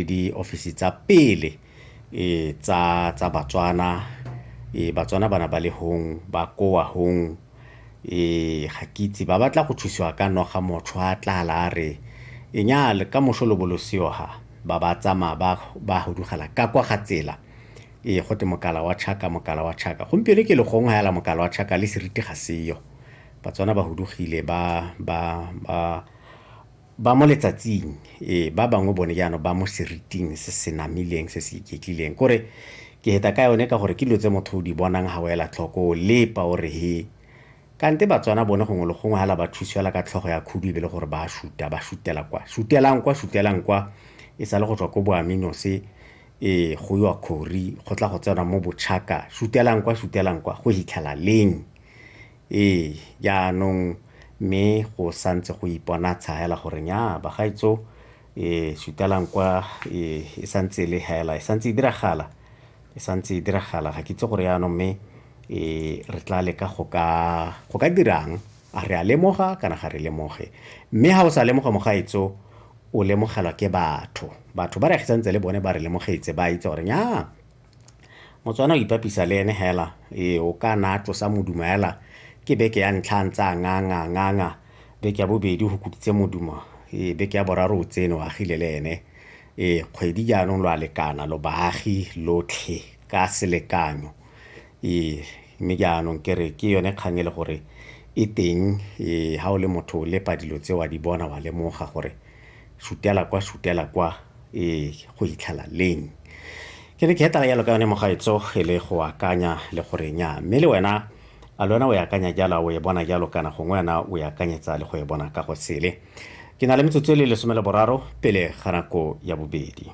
le diofisi tsa pele e tsa tsa Batswana e Batswana bana ba le hong ba koa hong e ga ke itse ba batla go thusiwa ka noga motho a tla la re e nya le ka mosho lo bolosio ha ba ba tsama ba ba hudugela ka kwa ga tsela e go te mokala wa chaka mokala wa chaka gompieno ke le gong ha yala mokala wa chaka le seriti ga seyo Batswana ba hudugile ba ba ba Ba mo letsatsing, ee, ba bangwe bone jaanong ba mo seriting se se namileng se se iketlileng. Ko re, Ke heta ka yone ka gore ke dilo tse motho o di bonang ha o ela tlhoko, o lepa o re he. Kante Batswana bone gongwe le gongwe hala ba thusiwa la ka tlhogo ya khudu e be le gore ba a shuta, ba shutela kwa. Shutelang kwa, shutelang kwa, e sale go tswa ko Boaminose, ee, go iwa Khori, go tla go tsenwa mo Bochaka, shutelang kwa, shutelang kwa, go hitlhela leng? Ee, jaanong mme go sa ntse go iponatsha hela gore nyaa bagaetso e sutelang kwa e, e sa ntse e le hela e sa ntse e diragala e sa ntse e diragala ga ke itse gore jaanong mme e re tla leka go ka go ka dirang a re a lemoga kana ga re lemoge mme ga o sa lemoga mogaetso o lemogelwa ke batho batho ba re agisantse le bone ba re lemogetse ba itse gore nyaa Motswana o ipapisa le ene hela, ee o ka na a tlosa modumo hela ke beke ya ntlha a ntse a nganga nganga beke ya bobedi go kutitse modumo ee beke ya boraro o tsene o agile le ene ee kgwedi jaanong lo a lekana lo baagi lotlhe ka selekanyo ee mme jaanong ke re ke yone kgang e le gore e teng ee ga o le motho o lepa dilo tse wa di bona wa lemoga gore Sutela kwa, sutela kwa, e go itlhela leng? Ke ne ke hetana jalo ka yone mogaetso e le go akanya le gore nya mme le wena a le wena o e akanya jalo o e bona jalo kana gongwe wena o e akanyetsa le go e bona ka go sele. Ke na le metsotso e le lesome le boraro pele ga nako ya bobedi.